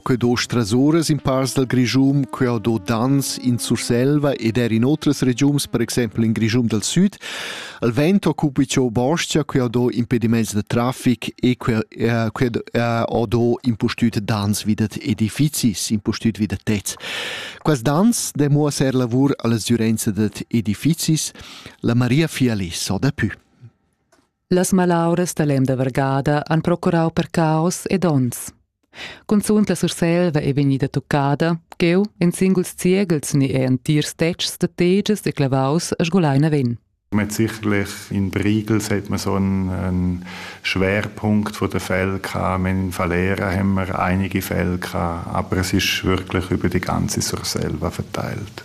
Quei do strasuras in pars dal Grischum, quei ho do Dans in Surselva ed er in otras regiuns, per exempel in Grischum dal Süd. Il vent occupi ciò boscha, quei ho do impediments da traffic e quei, eh, quei eh, ho do impustüt Dans vi da edifizis, impustüt vi da tets. Quas Dans demuossa er lavur alla sgürenza dad edifizis. La Maria Fialis ho da pü. Las malauras da l'emda vargada han procurau per caos ed onns. Cunzunt la Surselva è vegnida tuccada, cheu en singuls ziegels ni è entirs tetgs da teges e clavaus a sgulai naven. Mit sicherlich in Briegels hat man so einen, einen Schwerpunkt von den Fällen gehabt. In Valera haben wir einige Fälle gehabt, aber es ist wirklich über die ganze Surselva verteilt.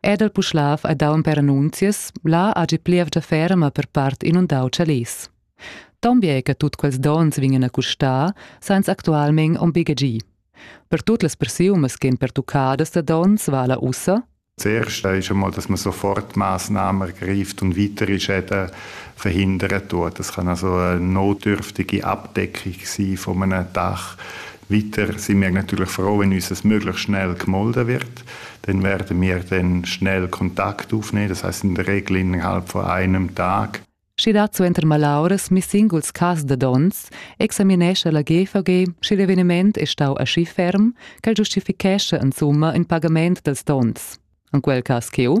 Ed el puschlav ha dau per annunzias, là hagi plievgia ferma per part inundau tschalers. Ton bien che tut quels dons vegnan a custar, sainz actualment on bigegi. Per tut las persiumas ch'en pertuccadas da dons vala ussa, Zuerst ist einmal, dass man sofort Maßnahmen ergreift und weitere Schäden verhindern tut. Das kann also eine notdürftige Abdeckung sein von einem Dach, Weiter sind wir natürlich froh, wenn uns es möglichst schnell gemolden wird. Dann werden wir dann schnell Kontakt aufnehmen, das heißt in der Regel innerhalb von einem Tag. Schi dazu inter malauras mi singuls cas da dons, examinescha la GVG, schi l'eveniment è stau aschi ferm, ch'el giustifichescha insumma in pagament dels dons. En quel cas ch'eu,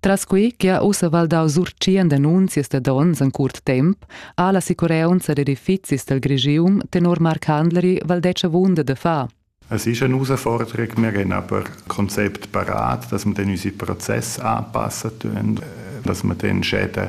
Tras quei che ha ussa valdau sur tschient annunzias da donns en curt temp, ha la sicureunza d'edifizis del Grigium tenor Marc Handleri valdetsch avunda da far. Es ist eine Herausforderung. Wir haben aber ein Konzept parat, dass wir dann unseren Prozess anpassen tun, dass wir dann Schäden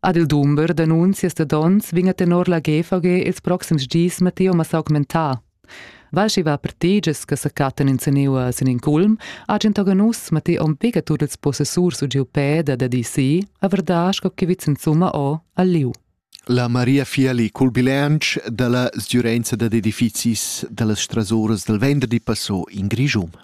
Ad il dumber d'annunzias da donns vegna tenor la GVG ils proxims dis Matteo ma s'augmentà. Val schi va per teges che sa cattan in seniua sin in culm, agent oganus Matteo om pega tur ils possessurs u giu peda da DC, a verdà sco che vits insumma o al liu. La Maria Fiali cul bilanc dalla sgiurenza dad edifizis dallas strasoras del venderdi passò in Grischum.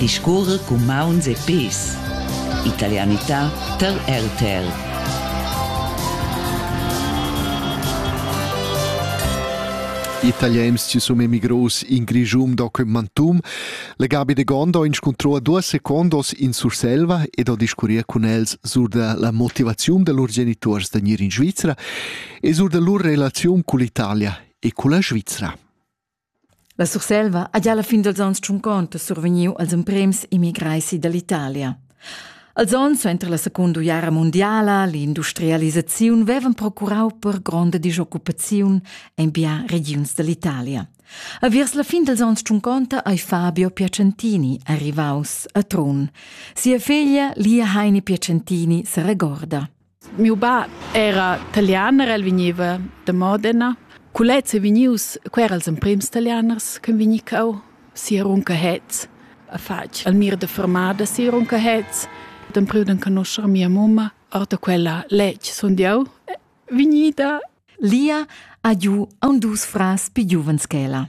Discurrer cun mauns e pes. Italianità tar RTL. Italiens ci sono emigros in Grigium documentum. Le Gabi de Gondo inscontrò due secondos in Surselva ed ho discurria con els sur de la motivazione de lur genitors da gnir in Svizzera e sur de lur relation con l'Italia e con la Svizzera. La Surselva ha gia la fin dals onns tschunconta survegniu els emprems immigrai dall'Italia. Els onns suenter la secunda uiara mundiala, l'industrialisaziun vevan procurau per gronda disoccupaziun en bien regiuns dall'Italia. A viers la fin dals onns tschunconta ei Fabio Piacentini arrivaus a Trun. Sia feglia Lia Heini Piacentini se regorda. Miu bab era talianer, el vegniva da Modena. Culez è vegnius, quei era els emprims talianers che vegni cau, si a Runcahetz, a fatg al mir de fermada si a Runcahetz. D'empriu d'enconoscer mia mumma, ora quella letg sun jau vegnida. Lia ha giu aun dus frars pi giuvens che ella.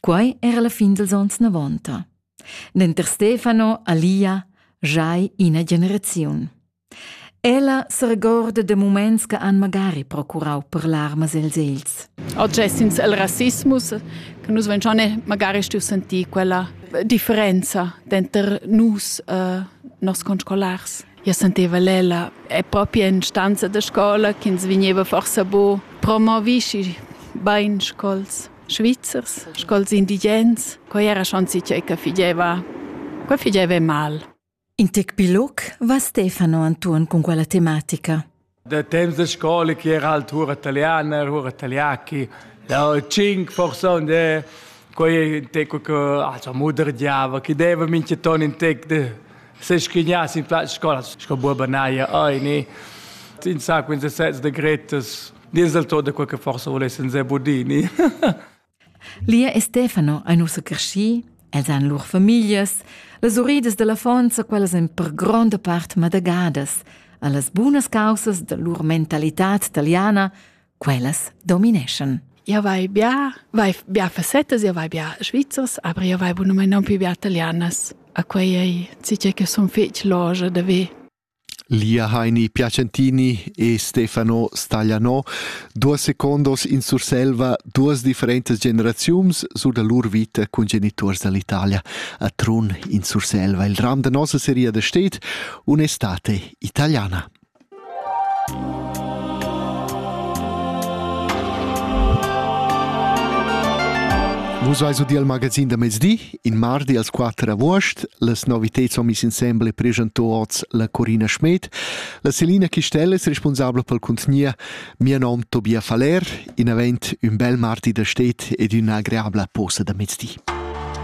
Quai era la fin dels ons navonta. Denter Stefano, Alia, giai ina generaziun. Ella s'regorda de muments che han magari procurau per larmas els els. Oggi è senza il rassismus che nus ventione magari stiamo sentire quella differenza dentro nus, eh, nos conscolars. Io senteva Lela, è proprio in stanza di scuola che ins veniva forse bo promovisci ben scols. Svizzers, sco'ls indigens, quai era schon sincer che figeva. Quai figeva mal. In tec biloc va Stefano Anton con quella tematica. Da temps da scola che era alt hura italiana, hura italiachi, da cinque persone, quai in tec che also mudergiava, che deva minche ton in tec de se schignas in place scola, sco buoba naia, oi, ne. In sacco in se sets de gretas, Dies del tot de quel che forse volessin Zebudini. Lia e Stefano ein ussa cresci, els han lur famiglias, las uridas dell'affonza, quellas in per gronda part madagadas, allas bunas causas de lur mentalità italiana, quellas domineschan. Io vai bia, vai bia facetas, io vai bia svizzers, aber io vai buno mai non più bia italianas. A quei ei, ci che son fec loge de ve. Lia Heini Piacentini e Stefano Staglianò, duas secondos in Surselva, duas differentas generaziuns sur da lur vita cun geniturs dall'Italia a Trun in Surselva. Il ram da nossa seria da stet un'estate italiana. Vus eis u dir al magazin da mezdi In mardi als quatter avuost las novitads ho miss insembel e preschanto oz la Corina Schmed, la Selina Chistel es responsabla pel cuntgnia, mia nom Tobia Faller, in avent ün bel mardi da stet ed üna agreabla posa da mezdi.